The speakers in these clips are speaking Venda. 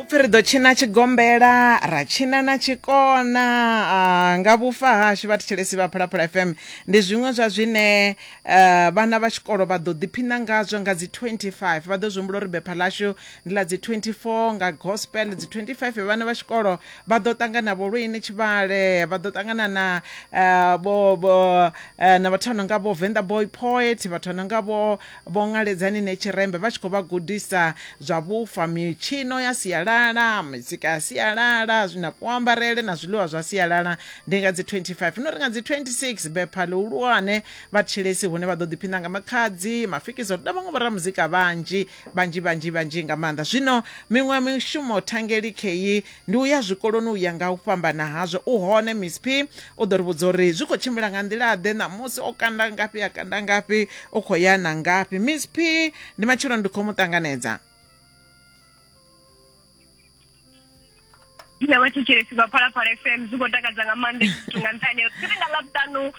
upfi ri ḓo tshina tshigombela ra tshina na tshikona ah, nga vhufa hashu vha thetshelesi vha phalaphala fm ndi zwiṅwe zwa zwine eh, vhana vha tshikolo vha ḓo ḓiphina ngazwo nga dzi 25 vha ḓo zwi humbula uri bepha ḽashu ndi ḽa dzi 24 nga gospel dzi 25 vhana vha tshikolo vha ḓo ṱangana vho lwini tshivhale vha ḓo ṱangana na eh, vho vho, eh, na vhathu vha no nga vho venḓa boy poet vhathu vha no nga vho Vho Ngaledzani ne tshirembe vha tshi khou vha gudisa zwa vhufa, mitshino ya sialala, mizika ya sialala, na kuambarele na zwiḽiwa zwa sialala. Ndi nga dzi 25 no ri nga dzi 26 bepha ḽihulwane vha Tshilesi hune vha ḓo ḓiphina nga Makhadzi, Mafikizolo na vhaṅwe vhoramuzika vhanzhi vhanzhi vhanzhi vhanzhi nga maanḓa. Zwino miṅwe mishumo thangeli khei Ndi u ya zwikoloni u ya nga u fhambana hazwo. U hone, Miss P u ḓo ri vhudza uri zwi khou tshimbila nga nḓila-ḓe, ṋamusi o kanda ngafhi, a kanda ngafhi, u khou ya na ngafhi. Miss P, Ndi matshelo ndi khou mu ṱanganedza. Nṋe vhatshetshelesi vha Phalaphala FM zwi khou takadza nga maanḓa nga nṱhani ha uri tshifhinga ḽavhuṱanu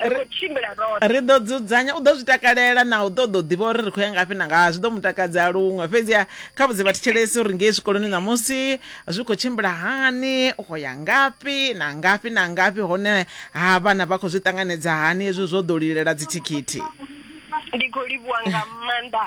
ri khou tshimbila roṱhe ri ḓo dzudzanya u ḓo zwi takalela na u ṱoḓa u ḓivha uri ri khou ya ngafhi na ngaha zwi ḓo mu takadza luṅwe fhedziha kha vhudze vhathetshelesi uri ngei zwikoloni ṋamusi zwi khou tshimbila hani u khou ya ngafhi na ngafhi na ngafhi hone ha vhana vha khou zwi ṱanganedza hani hezwi zwo ḓo lilela dzithikhithi ndi khou livhuwa nga maanḓa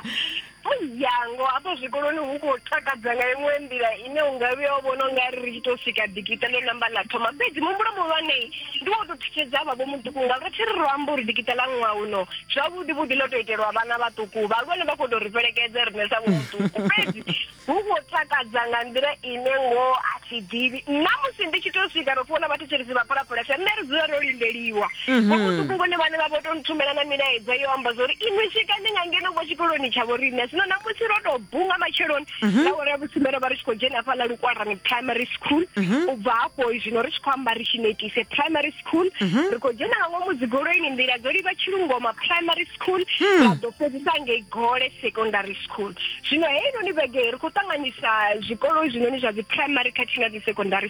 Muyango hafho zwikoloni hu khou takadza nga iṅwe nḓila ine u nga vhuya u vhona u nga ri ri tshi tou swika dikiṱa ḽo namba ḽa thoma fhedzi muhumbulo muhulwane ndi wo tou thutshedza vha vho muṱuku nga ro thi ri ro amba uri dikiṱa ḽa ṅwaha uno zwavhuḓi vhuḓi ḽo tou itelwa vhana vhaṱuku vhahulwane vha khou tou ri fhelekedza riṋe sa vho muṱuku fhedzi hu khou takadza nga nḓila ine ngoho a thi ḓivhi nna musi ndi tshi tou swika ro fhiwa na vhathetshelesi vha phalaphalesa nṋe ri dzula ro lindeliwa vho muṱuku vhone vhane vha vho to nthumela na milaedza yo amba zwa uri inwi swikani nga ngeno vho tshikoloni tsha vhoriṋe zwino namusi ro tou bunga matsheloni nga uri ya vhusumbe ro vha ri tshi khou dzhena hafhaḽa lukwarani primary school u bva hafho zwino ri tshi khou amba ri tshi netise primary school ri khou dzhena nga ngomu dzigoloini nḓila dzo livha tshilungoma primary school ra ḓo fhedzisa ngei gole secondary school zwino heinoni vhege ri khou ṱanganyisa zwikolo zwinoni zwa dzi primary khathihi na dzi secondary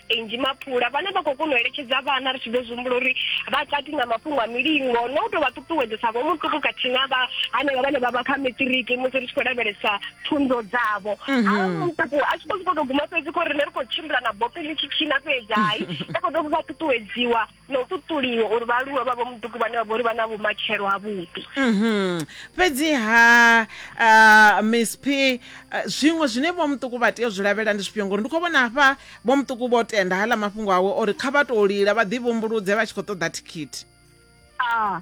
Angie Mapula vhane vha khou kona u eletshedza vhana ri tshi ḓo zwihumbula uri vha kati na mafhungo a milingo no tou vha ṱuṱuwedzesa vho muṱuku khathihi na vha hanevha vhane vha vha kha metiriki musi ri tshi khou lavhelesa pfunzo dzavho a muṱuku a tshi khou sokou tou guma fhedzi khou ri ne ri khou tshimbila na bope ḽi tshi tshina fhedzi hai ri khou tou vha ṱuṱuwedziwa na u ṱuṱuliwa uri vhaaluwa vha vho muḓuku vhane vha vha uri vha na vhumatshelo ha vhuḓi mhm. fhedzi ha uh, miss p uh, zwiṅwe zwine vho muṱuku vha tea u zwi lavhelela ndi zwifhio ngori ndi khou vhona hafha vho muṱuku vho tenda haḽa mafhungo awe uri kha vha tou lila vha ḓi vhumbuludze vha tshi khou ṱoḓa thikhithi a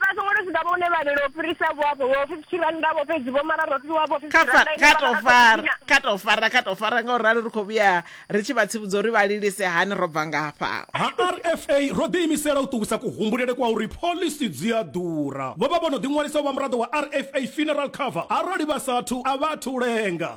Vha songo tou swika vho hune vha lilo u fhirisa vho afho vho fifty rannda vho fhedzi vho mara ro fhiwa vho fifty rannda kha to fara kha to fara kha to fara nga u ralo ri khou vhuya ri tshi vha tsivhudza uri vha lilise hani ro bva ngafha. Ha RFA ro ḓiimisela u ṱuwisa kuhumbulele kwa uri phoḽisi dzi a ḓura. Vho vha vho no ḓiṅwalisa u vha muraḓo wa RFA Funeral Cover arali vha sa athu a vha athu u lenga.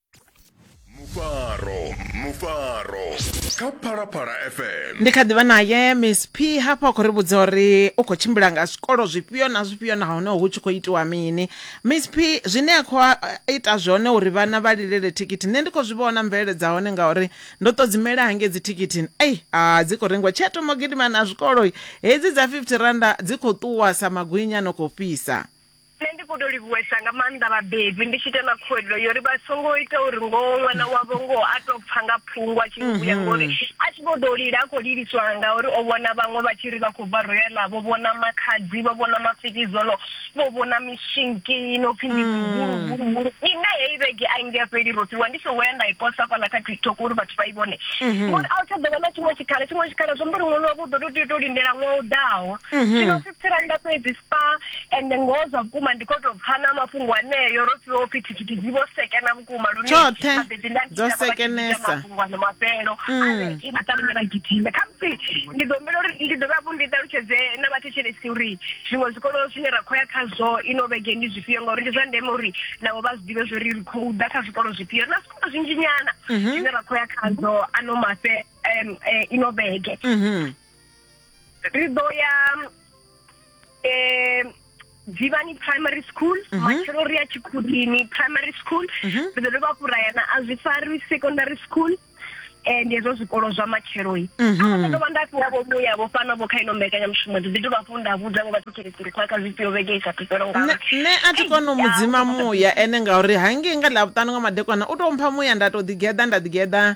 mufaro mufaro kha phalaphala fm ndi kha ḓivha naye miss p hafha a khou ri vhudza uri u khou tshimbila nga zwikolo zwifhio na zwifhio nahone hu tshi khou itiwa mini miss p zwine a khou a- ita zwone uri vhana vha lilele thikhithi nṋe ndi khou zwi vhona mvelele dza hone ngauri ndo to dzimela hangei dzi thikhithi ei a dzi khou rengiwa tshe thoma u gidima na zwikolo hedzi dza 50 randa dzi khou ṱuwa sa magwinya no khou fhisa Nṋe ndi khou tou livhuwesa nga maanḓa vhabebi ndi tshi ita na khuwelelo yo ri vha songo ita uri ngoho ṅwana wavho ngoho a tou pfa nga phungo a tshi ni vhuya ngori a tshi vho ḓo lila a khou liliswa ngauri o vhona vhaṅwe vha tshi ri vha khou bva royala vho vhona makhadzi vho vhona mafikizono vho vhona mishinki no pfhi ndi mihuluhuluhulu ine heyi vhege a i nge a fheli ro fhiwa ndi songo ya nda i posa fhaḽa kha tiktok uri vhathu vha i vhone ngori a u tsha ḓo vha na tshiṅwe tshikhala tshiṅwe tshikhala zwi amba uri ṅwana wavho u ḓo tou tea u tou lindela ṅwaha u ḓaho zwino si tsiranda fhedzi pa ende ngoho zwa vhukuma ndi kho to pfa na mafhungo aneyo ro fhiwa upfi thikhithi dzi vho sekena vhukuma lune tshoṱhe dzo sekenesa mafhungo mafhelo mm. i maṱalumela gidime khamusi ndi ḓo humbela uri ndi dovhe hafhu ndi ṱalutshedze na vhathetshelesi uri zwiṅwe zwikolo zwine ra khou ya khazwo ino vhege ndi zwifhio ngauri ndi zwa ndeme uri navho vha zwi ḓivhe zwori ri khou ḓa kha zwikolo zwifhio na zwikolo zwinzhi nyana mhm. zwine ra khou ya khazwo ano mafhe um eh, ino vhege mhm. ri ḓo ya um dzivhani primary school mhm. matshelo ri ya tshikhudini primary school mhm. ri ḓo dovha fhura yana a zwi fari secondary school and hezwo zwikolo zwa matshelo-i mhm. a ndo vha nda fhiwa vho vhuya vho fana vho kha ino mbekanyamushumo ndi ḓi dovha fhu nda vhudza vho vhaṱhutshelekiri khwa kha zwifhio vhege i sa thupelo ngauri nṋe a thi kone u mu dzima muya ene ngauri hangei nga ḽa vhuṱanu nga madekwana u tou mpha muya nda tou ḓigeḓa nda ḓigeḓa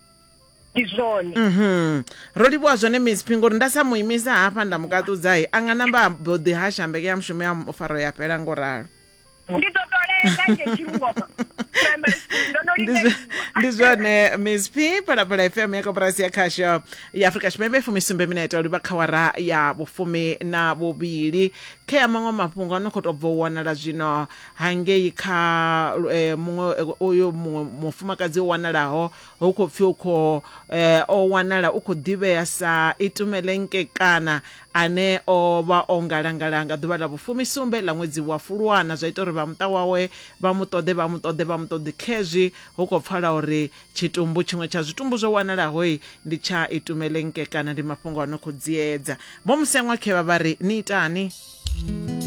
ndi zwone Mhm. ro livhuwa zwone miss phi ngori nda sa mu imisa hafha nda mu kaṱudza he a nga namba a mbo ḓi hasha mbeke ya mushumo ya mu- faro ya fhela ngo ralo ndi ḓo tolela nge tshirungoma primary school ndo no Ndi zwa- lindeliwa ndi zwone miss p phalaphala fm ya koporasi ya khasho ya afrika tshipembe fumi sumbe minete o livha kha wara ya vhufumi na vhuvhili khe ya maṅwe mafhungo a no khou tou bva u wanala zwino hangei kha muṅwe uyu muṅwe mufumakadzi o wanalaho hu khou pfi u khou o wanala u khou ḓivhea sa Itumele Nkekana ane o vha o ngalangala nga ḓuvha ḽa vhufumisumbe ḽa ṅwedzi wa Fulwana zwa ita uri vha muṱa wawe vha mu ṱoḓe vha mu ṱoḓe vha mu ṱoḓe khezwi hu khou pfala uri tshitumbu tshiṅwe tsha zwitumbu zwo wanalaho ndi tsha Itumele Nkekana ndi mafhungo a no khou dziedza vho Musengwa khevha vha ri ni itani